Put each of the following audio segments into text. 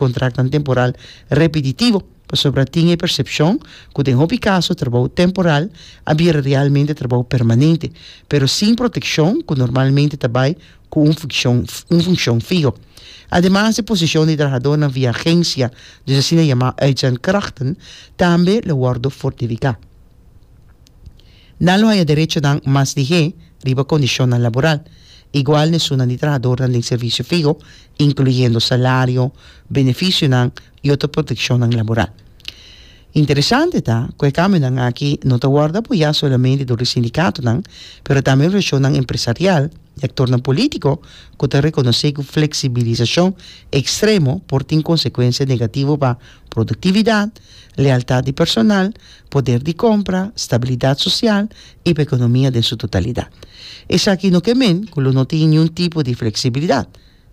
Kontràknan temporal repetitivo, pasobra tin e persepshon ku den hopi kaso trabou temporal a bira realmente trabou permanente, pero sin protekshon ku normalmente ta bai ku un fikshon un funkshon fiho. Ademas e posishon di trahadónan via agensia, dus asina yamá uitzendkrachten, tambe lo wòrdu fortifiká. Nan lo haya derechonan mas di he riba kondishonnan laboral, igual na esunnan di trahadornan den servisio fiho, inkluyendo salario, benefisionan i otro protekshonnan laboral. Interesante ta ku e kambionan aki no ta wòrdu apoyá solamente dor di sindikatonan, pero tambe organisashonnan empresarial i aktornan polítiko ku ta rekonosé ku fleksibilisashon ekstremo por tin konsekuensia negativo pa Productividad, lealtad di personal, poder di compra, stabilidad social y pa economia den su totalidad. Esaki no ke men cu lo no tin niun tipo di flexibilidad.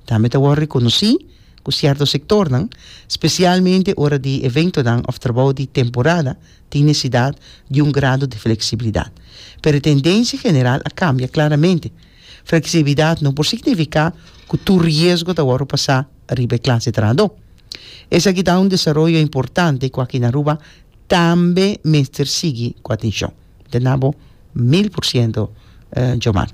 Tambe ta wor reconoci cu cierto sectornan, specialmente ora di eventonan of trabou di temporada, tin necesidad di un grado di flexibilidad. Pero e tendenci general a cambia claramente. Fleksibilidat no por signifiká ku tur riesgo ta wòrdu pasá riba e klas di trahadó. Esaki ta un desaroyo importante ku aki na Aruba tambe mester sigui ku atenshon. Te na bo mil por siento Jomar.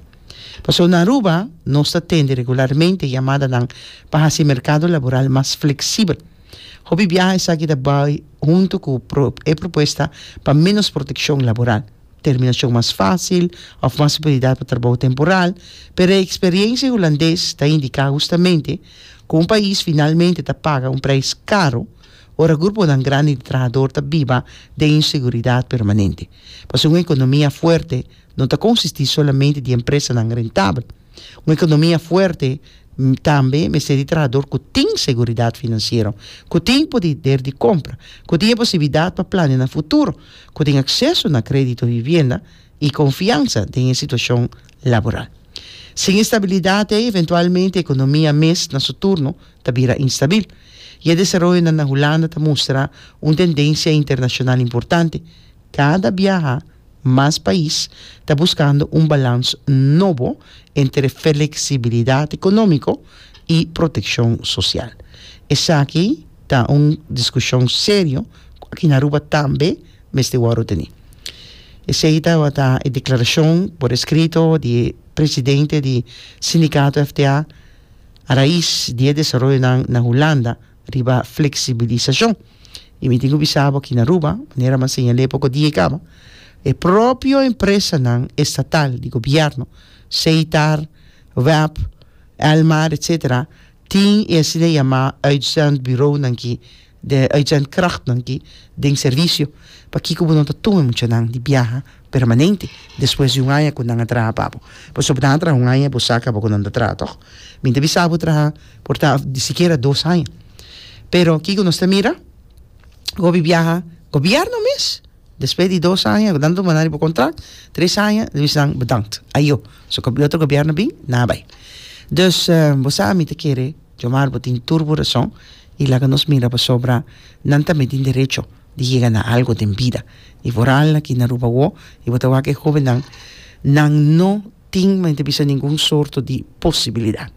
Pasobra na Aruba nos ta tende regularmente yamadanan pa hasi e merkado laboral mas fleksibel. Hopi biaha esaki ta bai huntu ku e propuesta pa ménos protekshon laboral. terminashon mas fásil òf mas opurtunidat pa trabou temporal, pero e eksperiensia hulandes ta indiká hustamente ku un pais finalmente ta paga un preis karu ora gruponan grandi di trahador ta biba den inseguridat permanente, pasobra un ekonomia fuerte no ta konsistí solamente di empresanan rentabel. Un ekonomia fuerte tambe mester di trahador ku tin seguridat finansiero, ku tin poder di kompra, ku tin e posibilidat pa plania na futuro, ku tin akseso na kredito vivienda i konfiansa den e situashon laboral. Sin e stabilidat ei, eventualmente e ekonomia mes na su turno ta bira instabil, i e desaroyonan na Hulanda ta mustra un tendensia internashonal importante, Cada biaha mas pais ta buscando un balans nobo entre flexibilidad economico y proteccion social. Esaki ta un discusion serio cu aki na Aruba tambe mester worde teni. Esey tabata e declaracion por escrito di e presidente di Sindicato FTA a raiz di e desaroyonan na Hulanda riba flexibilisacion. Y mi tin cu bisa bo aki na Aruba, manera mi a señal'e poco dia e caba, e propio empresanan estatal, di gobierno, Seitar, WEP, Elmar, etcetera, tin e asina yama uitzendbureaunan ki, uitzendkrachtnan ki den servicio. Pakico bo no ta tuma e muchanan di biaha? permanente despues di un aña cu nan a traha pa bo pasobra nan a traha un aña bo sa caba cu nan ta traha toch? mi ta bisa bo traha por ta sikiera dos aña pero kico nos ta mira? gobi biaha gobierno mes despues di dos aña cu nan duna nan riba contract tres aña ta bisa nan bedankt ayo so cu otro gobierno bin nan a bay dus bo sa mi ta kere Johmar bo tin tur bo rason y laga nos mira pasobra nan tambe tin derecho. di yega na algo den bida. I por al aki na Aruba awo, i bo ta wak e hóbennan, nan no tin, men ta bisa, ningun sorto di posibilidat.